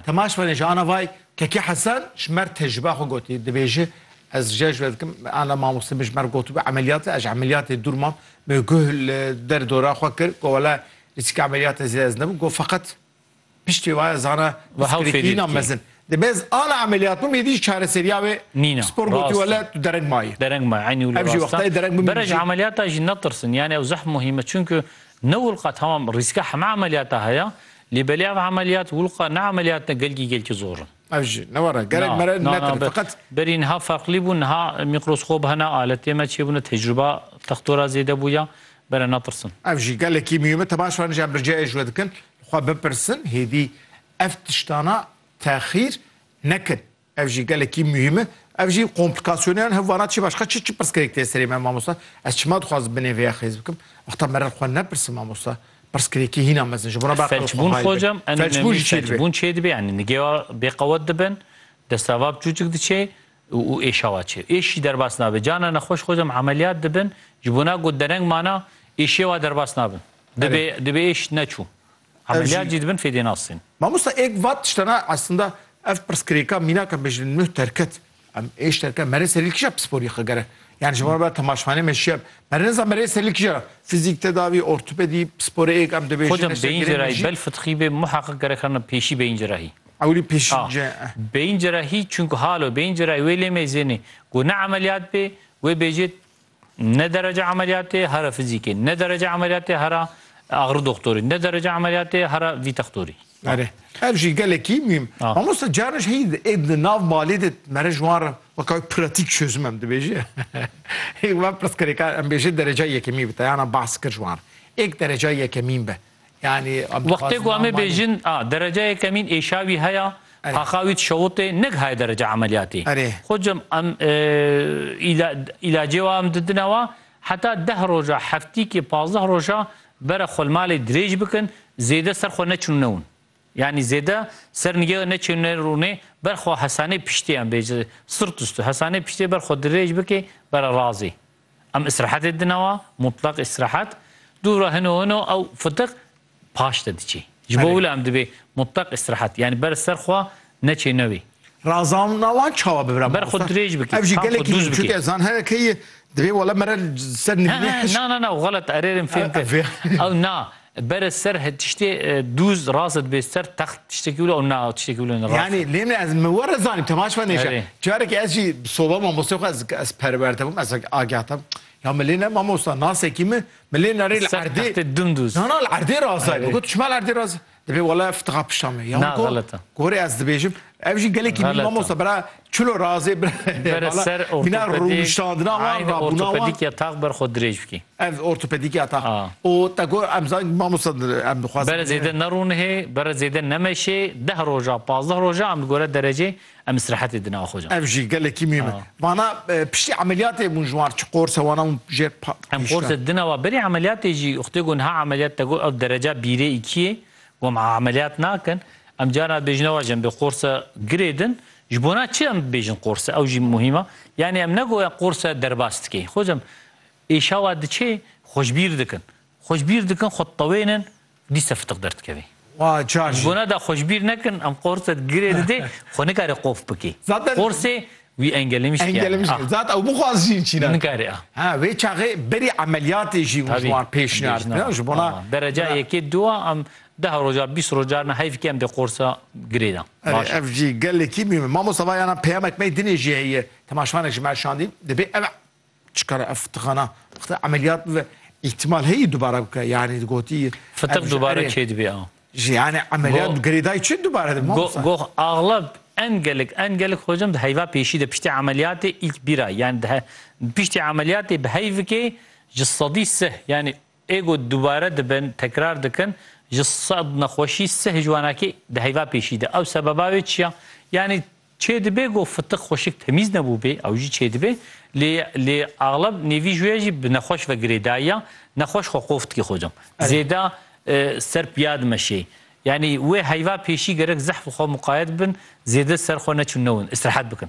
Temaş benê ji ana vay Kekî Hesen ji mer tecrübeya xwe gotî dibêji ez jê ji we dikim ana mamoste min ji mer gotibû emeliyatê ez ji emeliyatê dûr mam me guh li der dora xwe kir got wele rîskê emeliyatê zêde ez nebû got feqet piştê waya zana piskirêkîna mezin dibe ez ana emeliyat bûm êdî jî çareseriya wê nîna spor gotî wele tu dereng mayî dereng mayî eynî wilo rasta wextayê dereng bûm berê ji emeliyata jî netirsin yanî ew zeh muhîm e çunku ne wil qet hema rîska hema emeliyata heye Lê belê ev emeliyat wulqa ne emeliyat ne gelgî gelkî zor in. Ev jî ne were gerek mere netir feqet. Berî niha ferqlî bû niha mîkroskop hene aletê me çêbûne tecrûba textora zêde bûya bere netirsin. Ev jî gelekî mihîme te baş anî ja birceyê ji we dikin xwe bipirsin hêdî ev tiştana texîr nekin. Ev jî gelekî muhîm e. Ev jî komplîkasyoneyan hev vana çi başka çi çi pirsgirêk tê serê me mamosta? Ez çima dixwazim binê vê ya xêz bikim? Wexta merer xwe nepirsin mamosta. Pirsgirêkî hîna mezin ji bo re be aqil xwe Felçbûn xwe hocam en Felçbûn önemlî jî çê dibe. felçbûn çê dibe yani nigêwa bêqewet dibin, destava biçûçik diçe û û êşa wa çê. Êş jî derbas nabe. Carna nexweş xocam emeliyat dibin ji bo na got dereng mana êşê wa derbas nabin. Dibe dibe êş neçû. Emeliyat jî dibin fêdê nasîn. Mamosta êk vat tiştena eslinda ev pirsgirêka mînaka me ji li nuh derket. Em ê ji derke merê serî li kîja pisporî xwe gere? Yanî ji wan re temaşxaneyê me şiya me rê niza merê serî li kîja re? Fizîk, tedavî, ortopedî, pisporê êk em dibêjin Xwedem beyin cerahî bel fitxî bê muheqiq gerek xerina pêşî beyin cerahî. Ewilî pêşî ce. Beyin cerahî çunku halo beyin cerahî wê lê mêzênê ku ne emeliyat bê wê bêjê Ne derece emeliyatê hera fizîkê, ne derece emeliyatê hera axri doxtorî, ne derece emeliyatê hera vî textorî. Erê. Ev jî gelekî muhîm. Mamosta caran jî heyî di nav malê de mere ji wan re weka wê pratîk çözim em dibêje. Hêk me pirsgirêka em bêje dereca yekemî bi teyana behs kir ji wan re. Êk dereca yekemîn be. Yani em Wextê dixwazin ku em ê amanî- bêjin a dereceyê kemîn êşa wî heya, Erê. taxa wî dişewitê, nighaye derece emeliyatî. Erê. Xwecim em e, îla- îlacê wa em didine wa heta deh roja, heftîkê, pazdeh roja bere xwe li malê dirêj bikin, zêde ser xwe neçin û newin. Yani zêde ser nigê neçê û nerûnê, ber xwe hesanê piştê em bêje, sırt üstü, hesanê piştê ber xwe dirêj bikê bere razê. Em îstirahetê didin ewa, mutleq îstirahet. Dûra hino hino ew fitiq paş de diçê. Ji bo wila em dibê mutleq îstirahet. Yanî ber ser xwe neçê ne wê. Razandina wan çawa bibe mamosta? Ber xwe dirêj bikê. Ev jî gelekî dûz bikê. Çunke zan here keyî dibê wele mere ser nivînê hişk. Na na na ew xelet erêrên fêm kir. Ew na. Bere ser he tiştê dûz rast dibê ser text tiştekî wilo ew na tiştekî wilo ne rast. Yanî lê min ez mi were zanî tu maşva nêşa. Erê. Carekî ez jî bi soba mamosteyê xwe ez ez perwer te bûm ez agah te bûm. Ya mi lê ne mamosta nasekî mi mi lê nerê li Ser erdê textê dimdûz. Na na li erdê rast dayê. Erê. Got tu çima li erdê rast dibê wele fitiqa pişta me. Ya Na, min got xelet e. gorê ez dibêjim Ev jî gelekî nî mamosta bera çilo razê bera ser vîna rûnişandina wan ra ortopedîkya tax ber xwe dirêj bikî. Ev ortopedîkya tax û te got em zan mamosta em dixwazin. Bere zêde nerûnihê, bere zêde nemeşê, deh roja, pazdeh roja em gore derecê em îstirahetê dine axwe can. Ev jî gelekî mîm e. Vana piştî emeliyatê hûn ji wan çi qors e wana hûn jê pa. Em qors e dina wa berî emeliyatê jî xwedê got niha emeliyat te got ew dereca bîrê îkiyê Got em emeliyat nakin. Em carina dibêjin ew ajin bê qorse girê din. Ji bona çi em dibêjin qorse? Ew jî muhîm e. Yanî em negoya qorse derbas dikê. Xwecî em êşawa diçê xwe ji bîr dikin. Xwe ji bîr dikin, xwe ditewênin, dîsa fitiq derdikevê. Ji bona da xwe ji bîr nekin, em qorse girê didê, xwe nikarê qof bikê. Qorsê. Wî engelêmiş ki yani. Engelêmiş ki. Zat ew bixwaz jî çî ne. Nikare a. Ha wê çaxê berî emeliyatê jî û ji wan pêşniyar bike. Ji bona dereca yekê du a em deh roja bîst roja ne heyf ki em dê qorsa girê de. Baş. Ev jî gelekî mîm e. Mamosta va yana peyamek me dinê jî heye. Temaşvanê ji me şandîn. Dibê ev Çikare ev fitiqana xte emeliyat bibe ihtimal heye dubare bike yani gotî Fitiq dubare çê dibê a. Ji yani emeliyat bi girêdayî çi dubare dibe mamosta? Goh axleb en gelek en gelek xwecam di heyva pêşî de piştî emeliyatê îlk bîra yani dihe piştî emeliyatê bi heyvikê ji sedî sih yani Ê ku dubare dibin, tekrar dikin, ji sed nexweşî sih ji wan eke di heyva pêşî de. Ew sebeba wê çi ya? Yanî çêdibe ku fitik xweşik temîz nebûbê, ew jî çêdibe, lê lê axleb nêvî ji wê jî bi nexweş ve girêdayî ya, nexweş xwe qof dikê xwe cem. Zêda ser piya dimeşê. Yanî wê heyva pêşî gerek zehf xwe muqayet bibin, zêde ser xwe neçûn newin, îstirahet bikin.